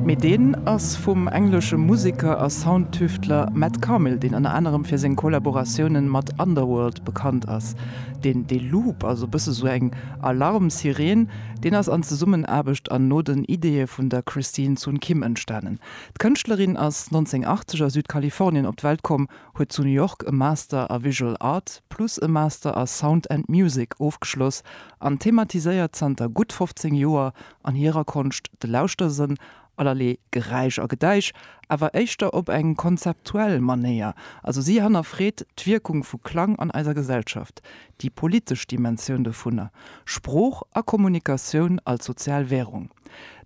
Mee deen ass vum englesche Museker a Soundtüftler Matt Carmel, deen ënner anerem fir seng Kollaboratiounen mat Underworld bekannt ass. Deen dee Loop, also bësse sou eng Alarmsireen, deen ass an Zesummenaarbecht an no den Ideeë vun der Christine Sun Kim entstanen. D'Kënschtlerin ass 1980 a Südkalifornien op d'Welt komm, huet zu New York e Master a Visual Art plus e Master a Sound and Music ofgeschloss an thematiséiert zanter gutt 15 Joer an hirer Konscht de Lauschtersënn, allerlee Geräisch a Gedäisch, awer éischter op eng konzeptuell Manéier. Also si hannerfreet d'Wierkung vu Klang an eiser Gesellschaft, déi politesch Dimensioun dovunner, Sprooch a Kommunikatioun als sozial Wärung.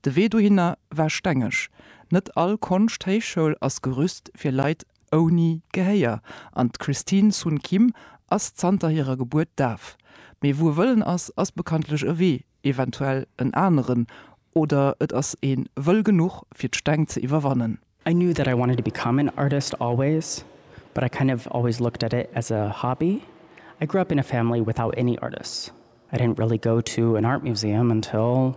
De Wee dohinner war stengeg, net all Konschthéichschoul ass gerüst fir Leit ouni Gehéier an d'Christine Sun Kim ass zanter hirer Gebuert daf. Mee wou e Wëllen ass, ass bekanntlech e Wee, eventuell en aneren, oder et ass ee wëll genuch fir d'Steng ze iwwerwannen. I knew that I wanted to become an artist always, but I kind of always looked at it as a hobby. I grew up in a family without any artists. I didn't really go to an art museum until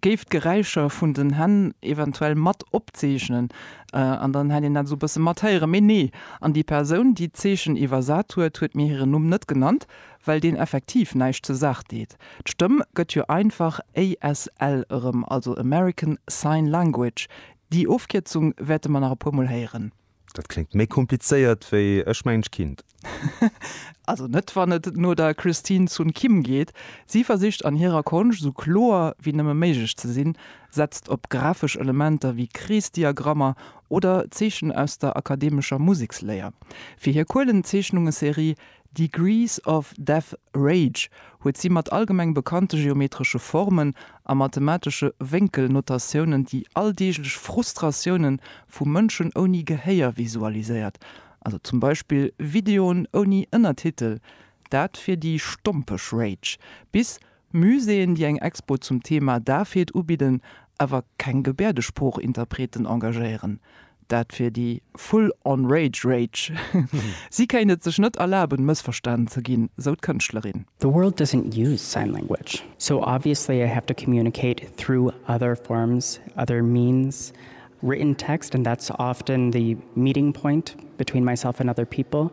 Géif d'Geräischer vun den Hänn eventuell mat opzeechnen an dann hätt een dat esou e bësse mat héieren. Mee nee, an déi Persoun, déi d'Zeechen iwwersat huet, huet mir hiren Numm net genannt, well deen effektiv näischt zur Saach deet. D'Stëmm gëtt jo einfach ASL erëm, also American Sign Language. Déi Ofkierzung wäerte mer nach e puer Mol héieren. Dat kléngt méi komplizéiert wéi Ech mengen ech kinnt. Also net wann et no der Christine Sun Kim geet. Si versicht an hirer Konscht esou kloer wéi nëmme méiglech ze sinn, setzt op grafesch Elementer wéi Kreesdiagrammer oder Zeechen aus der akademescher Museksléier. Fir hir Kuelenzeechnungeserie Degrees of Death Rage huet si mat allgemeng bekannte geometresche Formen a mathematesche Wénkelnotatiounen déi alldeeglech Frustratioune vu Mënschen ouni Gehéier visualiséiert, also zum Beispill Videoen ouni Ënnertitel, dat fir déi stompeg Rage, bis Muséeën, déi eng Expo zum Thema Dafheet ubidden, awer keng Gebäerdesprooch-Interpreten engagéieren. Dat wier déi full on rage rage. Si kéint et sech net erlaben, mëssverstanen ze ginn, sou d'Kënschtlerin. The world doesn't use sign language, so obviously I have to communicate through other forms, other means, written text, and that's often the meeting point between myself and other people.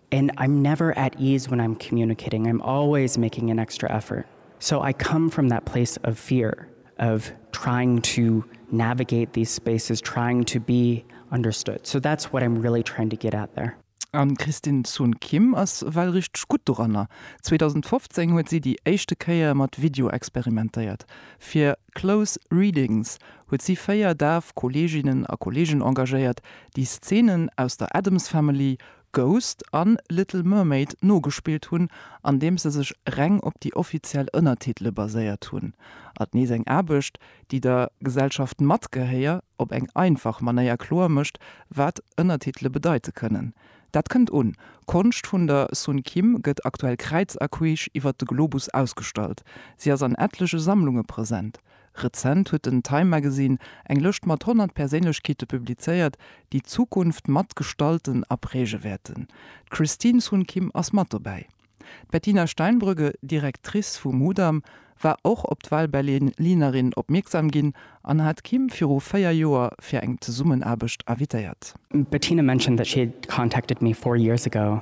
And I'm never at ease when I'm communicating, I'm always making an extra effort. So I come from that place of fear of trying to navigate these spaces, trying to be understood. So that's what I'm really trying to get at there. An d'Christine Sun Kim ass well richteg gutt doranner. 2015 huet si déi éischte Kéier mat Video experimentéiert. Fir Close Readings huet si véier daf Kolleeginnen a Kolleegen engagéiert, déi Szeenen aus der Addams Family Ghost a Little Mermaid nogespillt hunn, andeems se sech reng op déi offiziell Ënnertitele baséiert hunn. At nees eng Aarbecht, déi der Gesellschaft mat Gehéier op eng einfach Manéier kloer mécht, wat Ënnertitele bedeite kënnen. Dat kënnt un. Konscht vun der Sun Kim gëtt aktuell kräiz a queesch iwwert de Globus ausgestallt. Si ass an ettleche Sammlunge present. Rezent huet den Time Magazine eng Lëscht mat 100 Perséinlechkeete publizéiert, déi d'Zukunft mat gestalten a präge wäerten. D'Christine Sun Kim ass mat dobäi. D'Bettina Steinbrügge, Directrice vu Mudam, war och op d'Wahlberlinerin opmierksam ginn an hat d'Kim viru véier Joer fir eng Zesummenaarbecht invitéiert. Bettina mentioned that she had contacted me four years ago